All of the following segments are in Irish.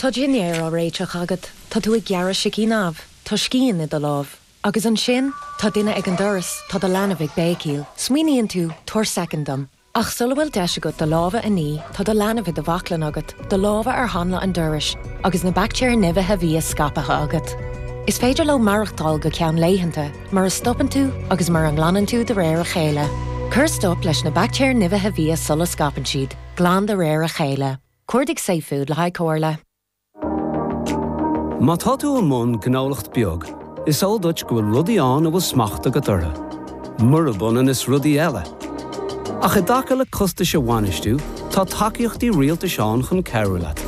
Tá dinnéar á réiteach agat, tá tú ag gearradh sicín amh, tá scian i do lámh. Agus ansin, tá duine ag an doras, tá do leanbh ag béicíl. Smaoiníonn tú, 'Tabhair soicind dom. Ach sula bhfuil deis agat do lámha a ní, tá do leanbh i do bhaclainn agat, do lámha ar hanla an dorais, agus na baictéir nimhithe bhia scaipthe agat. Is féidir leo maireachtáil go ceann laethanta, mura stopann tú agus mura nglanann tú de réir a chéile. Cuir stop leis na baictéir nimhithe bhia sula scaipeann siad. Glan de réir a chéile. Cuardaigh safefood le haghaidh comhairle. Má tá tú i mbun gnólacht beag, is eol duit go bhfuil rudaí ann a bhfuil smacht agat orthu, murab ionann is rudaí eile. Ach i dtaca le costais a bhainistiú, tá tacaíochtaí rialtais ann chun cabhrú leat.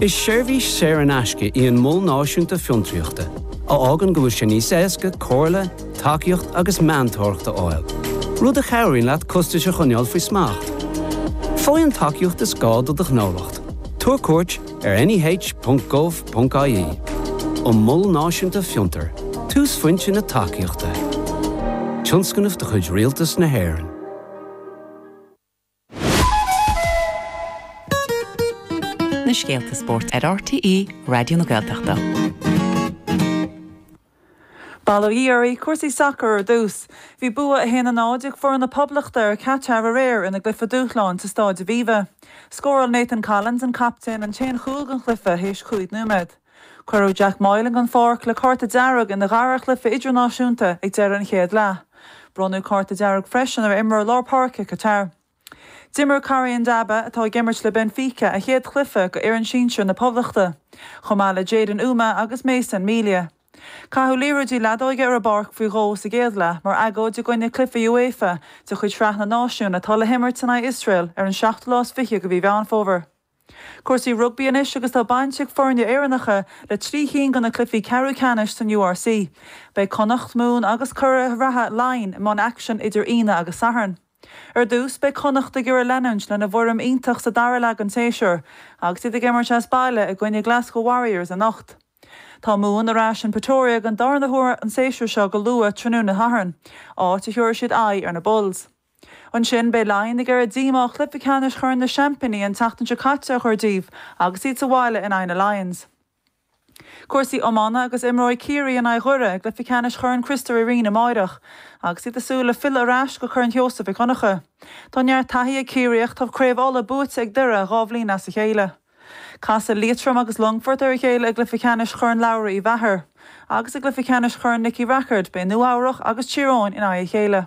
Is seirbhís saor in aisce í an Mol Náisiúnta Fiontraíochta a fhágann go bhfuil sé níos éasca comhairle, tacaíocht agus meantóireacht a fháil, rud a chabhraíonn leat costais a choinneáil faoi smacht. Faigh an tacaíocht is gá do do ghnólacht, tabhair cuairt ar neh.gov.ie an Mol Náisiúnta Fiontar, túsphointe na tacaíochta. Tionscnamh de chuid Rialtas na hÉireann. na scéalta spóirt ar RTÉ Raidió na Gaeltachta. Bail ó Dhia oraibh, cúrsaí sacair ar dtús. Bhí bua 1 0 ag foireann na Poblachta ar Chatar aréir ina gcluiche dúshláin sa Stáid Aviva. Scóráil Nathan Collins, an captaen, an t-aon chúl den chluiche théis cúig nóiméad. Cuireadh Jack Moylan den pháirc le cárta dearg ina dhara cluiche idirnáisiúnta ag deireadh an chéad leath. Bronnadh cárta dearg freisin ar imreoir lár páirce Qatar. D'imir Corrie Ndaba, atá ag imirt le Benfica, a chéad chluiche do fhoireann sinsir na Poblachta, chomh maith le Jaden Umeh agus Mason Melia. Caitheadh liathróidí leadóige ar an bpáirc faoi dhó sa gcéad leath mar agóid i gcoinne cluife UEFA de chuid Shraith na Náisiún atá le himirt in aghaidh Iosrael ar an seachtú lá is fiche de mhí Mheán Fómhair. Cúrsaí rugbaí anois agus tá baint ag foirne Éireannacha le trí chinn de na cluichí ceathrú ceannais san URC. Beidh Connacht, Mumhan agus curaidh reatha Laighin i mbun aicsin idir Aoine agus Satharn. Ar dtús, beidh Connacht ag iarraidh leanúint lena bhfoirm iontach sa dara leath den tséasúr agus iad ag imirt as baile i gcoinne Glasgow Warriors anocht. Tá Mumhan ar ais in Pretoria den darna huair an séasúr seo go luath tráthnóna Shathairn, áit a thiúrfaidh siad aghaidh ar na Bulls. Ansin, beidh Laighin ag iarraidh díomá ó chluiche ceannais Chorn na Seaimpíní an tseachtain seo caite a chur díobh agus iad sa bhaile in aghaidh na Lions. Cúrsaí iomána agus imreoidh Ciarraí in aghaidh Dhoire i gcluiche ceannais Chorn Chriostóir Uí Rinn amáireach agus iad ag súil le filleadh ar ais go Corn Sheosaimh Mhic Dhonncha. Tá neart taithí ag Ciarraí ach tá Craobh Uladh buaite ag Doire dhá bhliain as a chéile. Casfaidh Liatroim agus Longfort ar a chéile i gcluiche ceannais Chorn Labhraí Uí Mheachair agus i gcluiche ceannais Chorn Nicky Rackard beidh Nua-Eabhrac agus Tír Eoghain in aghaidh a chéile.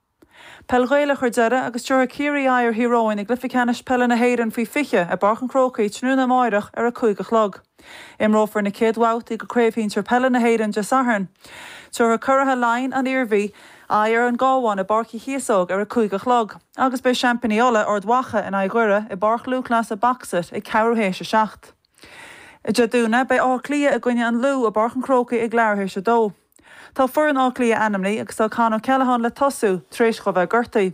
Peil Ghaelach ar deireadh agus tabharfaidh Ciarraí aghaidh ar Thír Eoghain i gcluiche ceannais peile na hÉireann faoi 20 i bPáirc an Chrócaigh tráthnóna amárach ar a cúig a chlog. Imreofar na chéad bhabhtaí de Chraobh Shinsir Peile na hÉireann Dé Sathairn. Tabharfaidh curaithe Laighean, An Iarmhí, aghaidh ar an gCábhán i bPáirc Uí Chíosóg ar a cúig a chlog agus beidh seaimpíní Uladh, Ard Mhacha, in aghaidh Dhoire i bPáirc Lúthchleasa Boxit ag ceathrú théis a seacht. Dé Domhnaigh, beidh Áth Cliath i gcoinne an Lú i bPáirc an Chrócaigh ag leathuair théis a dó. Tá foireann Átha Cliath ainmní agus tá Con O'Callaghan le tosú tar éis dhó bheith gortaí.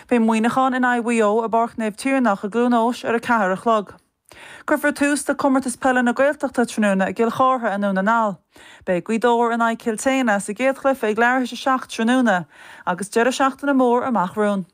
Beidh Muineachán in aghaidh Mhaigh Eo i bPáirc Naomh Tiarnach i gCluain Eois ar a ceathair a chlog. Cuirfear tús le Comórtas Peile na Gaeltachta tráthnóna i gCill Chartha i nDún na nGall. Beidh Gaoth Dobhair in aghaidh Chill tSéadhna sa gcéad chluiche ag leathuair théis a seacht tráthnóna agus deireadh seachtaine mór amach romhainn.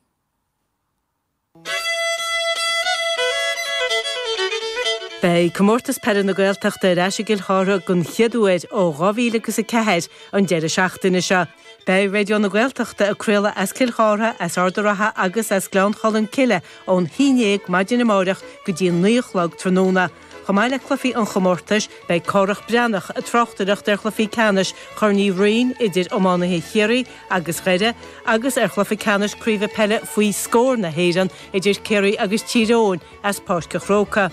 Beidh Comórtas Peile na Gaeltachta ar ais i gCill Chartha den chéad uair ó 2000 agus a 4 an deireadh seachtaine seo. Beidh Raidió na Gaeltachta ag craoladh as Cill Chartha, as Ard a' Rátha agus as Gleann Cholm Cille ón 11 maidin amárach go dtí an 9 a chlog tráthnóna. Chomh maith le cluichí an chomórtais, beidh Cárthach Breathnach ag tráchtaireacht ar chluiche ceannais Chorn Uí Rinn idir iománaithe Chiarraí agus Dhoire agus ar chluiche ceannais Craoibhe Peile Faoi Scór na hÉireann idir Ciarraí agus Tír Eoghain as Páirc a' Chrócaigh.